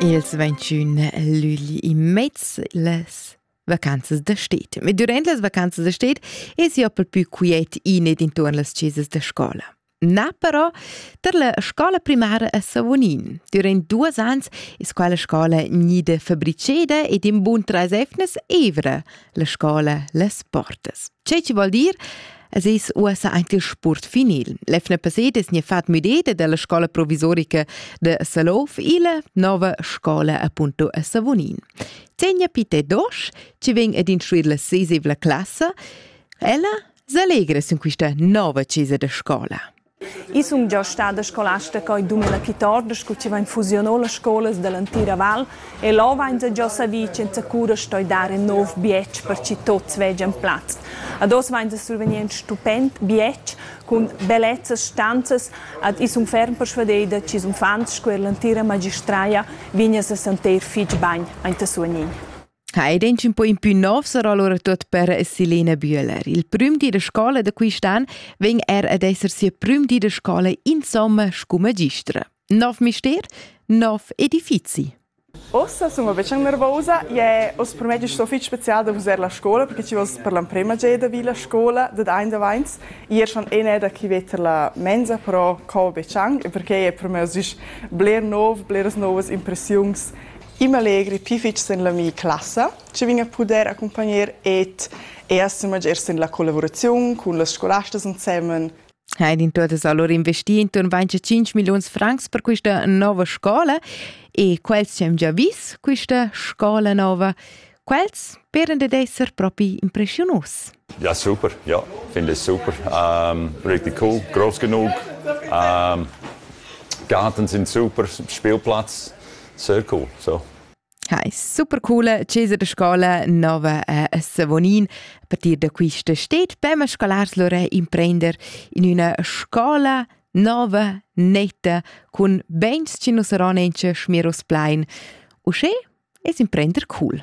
Els ventschun lügli immez las vacanzas da stet. Ma durant las vacanzas da stet es jo pel pü quiet in ed intuorn las chesas da scola. Na però tar la scola primara a Savonin. Durant duos ans es quella scola gnida fabriceda ed in bun trais efnas evra, la scola les portas. Che ci vuol dir? Es es uossa aint il sport finil. L'efna paset es ne fat müdeda dalla scola provisorica de Salouf illa nova scola appunto a Savonin. Tegna pite dosh, ci ven ad instruir la sesevla classa, ella s'allegra sin quista nova chesa de scola. I sun già stada scolasta coi 2014 scu chi vain fusiunà las scolas da l'antira val e là vainsa già savì ch'inza cura stoi dar ün nouv bietsch per chi tuots vegian plaz. Ad hoz vainsa survgnind stupend bietsch cun bellezzas stanzas ad i sun ferm persvadeda chi sun fans scu eir l'antira magistraja vignas a santer fich bagn aint a Suognin. Ha ed un po in pü nov sarà allura tuot per Selena Bühler. Il prüm di da scola da quist'an vegn er ad esser sia prüm di da scola insomma scu magistra. Nov mister, nov edifizi. Ossa sono večan nervosa e ho sprmedio sto fich special da vusar la scola perché ci vos per l'emprema geda vi la scola da ein da vains ier schon ene da chi veter la mensa però cau večan perché è per me sich bler nov, bleras novas impressiuns I m'allegri pii fitg sen la mia classa, che vegn a pudair accompagner ed e esser magher sen la collavuraziun cun las scolastas ensemen. Heidi in tuotas allora investì intorn 25 milliuns francs per questa nova scola e quels ci han già vis questa scola nova. Quels peran dad esser propi impressiunus. Ja, super. Ja, finde ich super. Ähm, richtig cool, groß genug. Ähm, Garten sind super, Spielplatz, sehr cool. So. Heiss super coole Cesare Scola nova a Savonin. A partir da quista steht beim scolars lore imprender in üna scola nova, netta, cun beins chi nu saron auncha schmiros plain. Uschè es imprender cool.